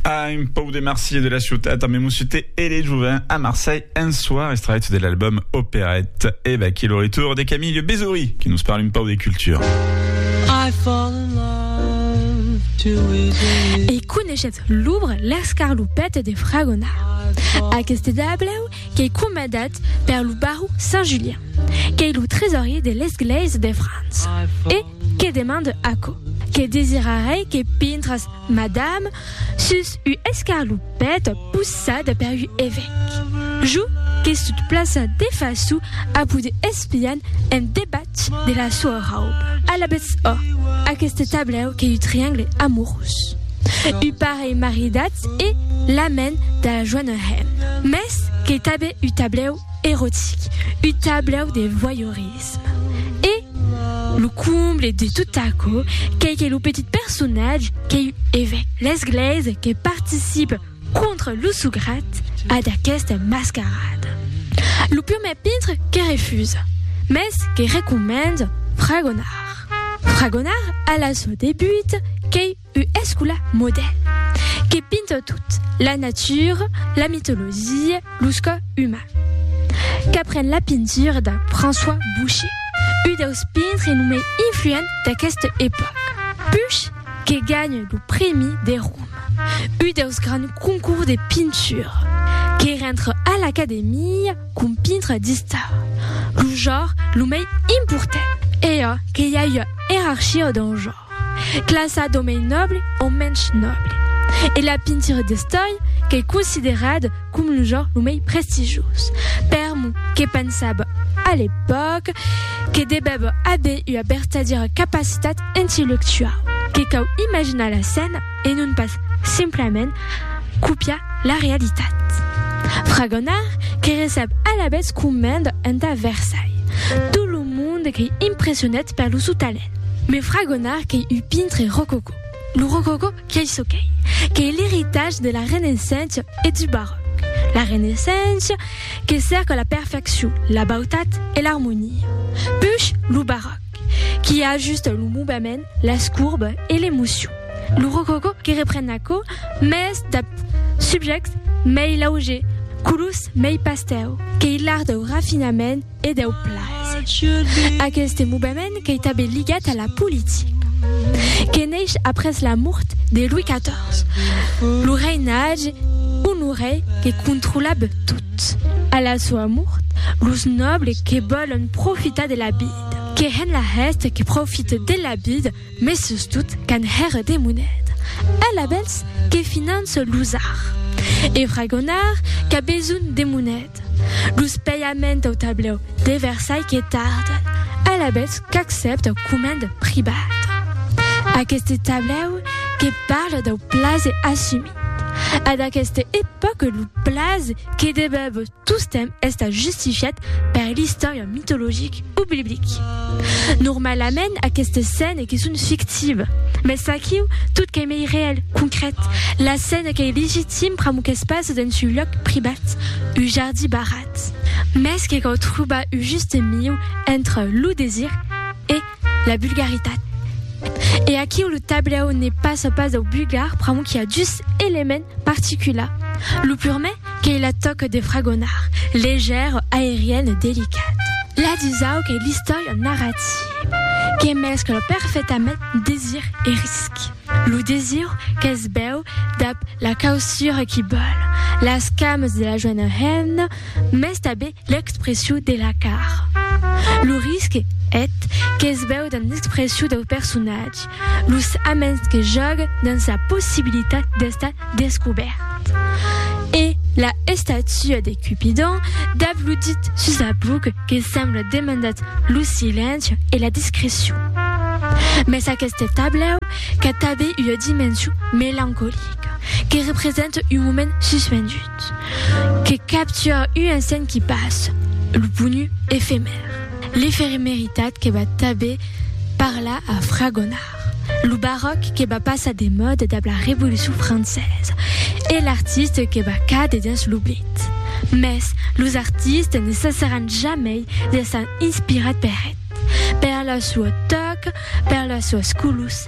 Ah, un pau de Marseille de la ciutat amb Moussute et les Jouvins à Marseille un soir, extrait de l'album Opérette. Et va qui le retour de Camille Bézoury qui nous parle un pau de culture. I fall in love too easily. E coneixetz l'ouvre L'escarlopette de Fragona. Aquest dableu qu'ei comandat per lo baró Saint-Julien, qu'ei lo tresorier de l'esglèisa de França. E Que demande aquò? Que desirarei que pintras, madame, sus u escarlupèt possada per u evèc. Jo que sut plaça de façu a poder espian en debat de la soa rauba. Alabètz ò, aqueste tablèu qu'ei u triangle amorós. U parelh maridatz e la men da la joana hèm. Mès qu'ei tabé u tablèu erotic, u tablèu de voyeurisme. L'Erotisme. E lo comble de tot aquò qu'ei que lo petit personatge qu'ei un evèc l'esglèisa que participe contra lo sograt a d'aquesta mascarada. Lo prumèr pintre que refusa, mès que recomenda fragonar. Fragonar a la sua debuta qu'ei U escola modèl que pinta tot, la natura, la mitologia, los cò uman. Qu'apren la pintura de François Boucher, u deus pintre lo mei influent d'aqueste epòc. Puch que ganha lo prèmi de Roma, u deus grands concours de pintura. Que rentre a l'Academia com pintre d'istar, lo jor lo mei important. E a que i a ua erarchia dau jor. Classa d'o mei nòble o mensh nòble. E la pintura d'estòi qu'ei considerada com lo genre lo mei prestigioz. Per mo, que pensava a l'epòca que devèva aver ua vertadiera capacitat intellectuau, que cau imaginar la scèna e non pas simplament copiar la realitat. Fragonard que recep alavetz comenda entà Versailles tot lo monde qu'ei impressionat per lo sou talent. Me fragonar qu'ei un pintre rococò. Lo rococò qu'ei çò qu'ei, qu'ei l'eritatge de la Renaissença e du Baròc. La Renaissença que cerca la perfeccion, la bautat e l'armonia. Push lo Baròc qui ajusta lo movement, las courbes e l'emocion. Lo rococò que repren aquò, mès dab subjèctes mei laugers, colors mei pastèu, qu'ei l'art dau rafinament, e deu plaser. Aqueste movement qu'ei tanben ligat a la politica, que neish après la mort de Louis XIV, lo reinatge onorei que controlab tot. A la soa mort, los nòbles que vòlon profitar de la vida, que hèn la hèsta que profite de la vida, Mès sustot quand hèr de monet, el a bèls que finans los ar. E fragonar qu'a besonh de monet, los pèiament au tablèu de Versai que tarden, el a bèls qu'accèpt au comènd pribat. Aqueste tablèu que parle dau plaze assumit, a d'aqueste epòque lo plaze que debèbos. Tostemp estat justifiat per l'istòria mitologic o biblic. Normalament aquestes scènes que son fictives, mès aquiu tot qu'ei mei reèl, concrèt, la scène qu'ei legitim pr'amor qu'es pas dens un lòc privat, un jardí barrat. Mès que cau trobar un juste miu entre lo desir e. la vulgaritat. E aquiu lo tablèu ne passa pas dau vulgar pr'amor qu'i a dus elements particulars. Lo purmè qu'ei la tòca de fragonar, legèra, aeriana, delicata. La dusau qu'ei l'istòria narrativa, que mescla perfectament desir e risc. Lo desir que's bèu dab la causura qu'i bòl, las camas de la joena hemna, mès tanben L'expressiu de la car. Lo risque et que's veu dans l'expressiu dau personatge, los aments que jògue dans sa possibilitat d'estar descobèrt. E la estatua de Cupidon dab lo dit sus la buc que sembla demandat lo silenci e la discrecion. Mès aqueste tablèu qu'a tabé ua dimension melancolica, que represente un moment suspendut. Que capture un insent qui passe, lo ponu efemèr. L'efemeritat que va tanben parlar a Fragonard, lo baròc que va passar de mòda dab la Revolucion Francesa e l'artiste que va càder dens l'oblit. Mès los artistes ne cessaràn jamei d'èsser inspirats per eth, per la sua tòca, per las suas colors,